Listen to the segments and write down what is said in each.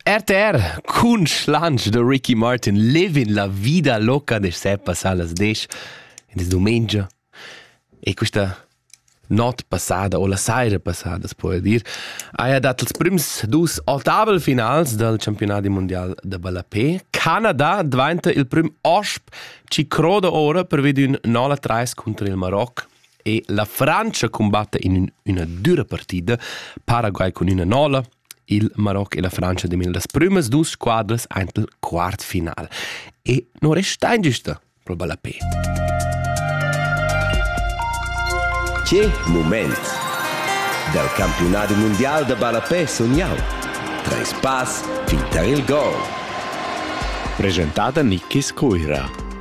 RTR cun schlanch de Ricky Martin levin la vida loca de se passar las 10 in des domenica e questa not passada o la saira passada, puoi dir, haja dat els prims dus otavel finals del campionati mondial de ballapé. Canada dvainta il prim osp ci croda ora per ved ün 0-3 contro il Maroc. E la Frantscha cumbatta in üna düra partida, Paraguay cun üna nola, il Maroc e la Frantscha demin las prümas dus squadras aint il quart final. E non resta ingiusta pro Ballapé. Che moment! Dal campionat mondial da Ballapé sun jau. Treis pass fin tar il gol. Presentada Nikis Coira.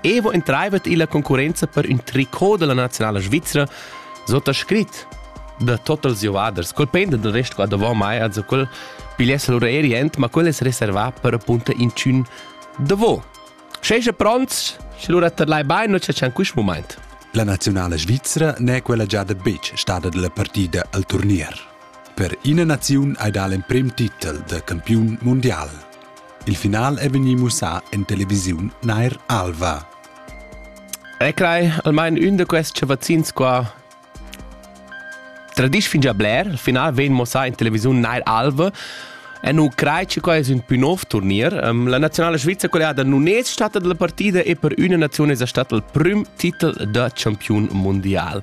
Evo entreivet illa concurrenza per ün tricot della nazionala svizra sottoscrit da total giovaders, col pendent del resto qua davant mai, also quel pigliesse l'orreri ent, ma quel es reservà per appunto inchün davò. Scheja pronts, sche lura terlai bain, non c'è quist moment. La nazionala svizra n'è quella già da betg stada della partida al turnier. Per ina naziun hai dà l'emprim titel da campiun mundial. Il final è vegnì mussà en televisiun Nair Alva. E crai, almain ün da quests vaccins qua Tradisch fin già bler, il final vegn mossà in televisiun Nair Alva. E nu crai che quai es ün più nov turnier. Um, la nazionale Svizzera collegata nun è stata dalla partida e per üna nazione è stata il prüm titel da champiun mondial.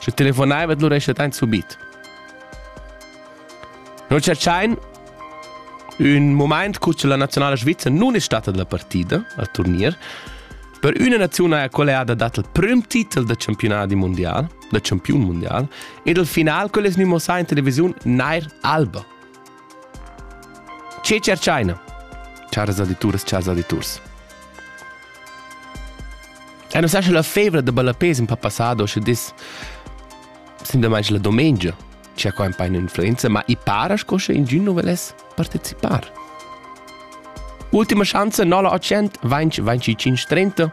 Sche telefonaivet lura escha dein subit. Noi tscherchain ün moment cu che la nazionala svizza nun è stata la partida al turnier per üna naziunala colleada dat il prüm titel da campionati mondial, da campiun mondial, ed il final quel es gnü mossà in televisiun Nair Alba. Che tscherchaina? Charas audituras, chars auditurs. E non sa la febra de ballapés in passado sche dis sin demai la domenica c'è qua un po' influenza, ma i para sco sche in giorno volesse partecipare. Ultima chance, 9 800 20 25 30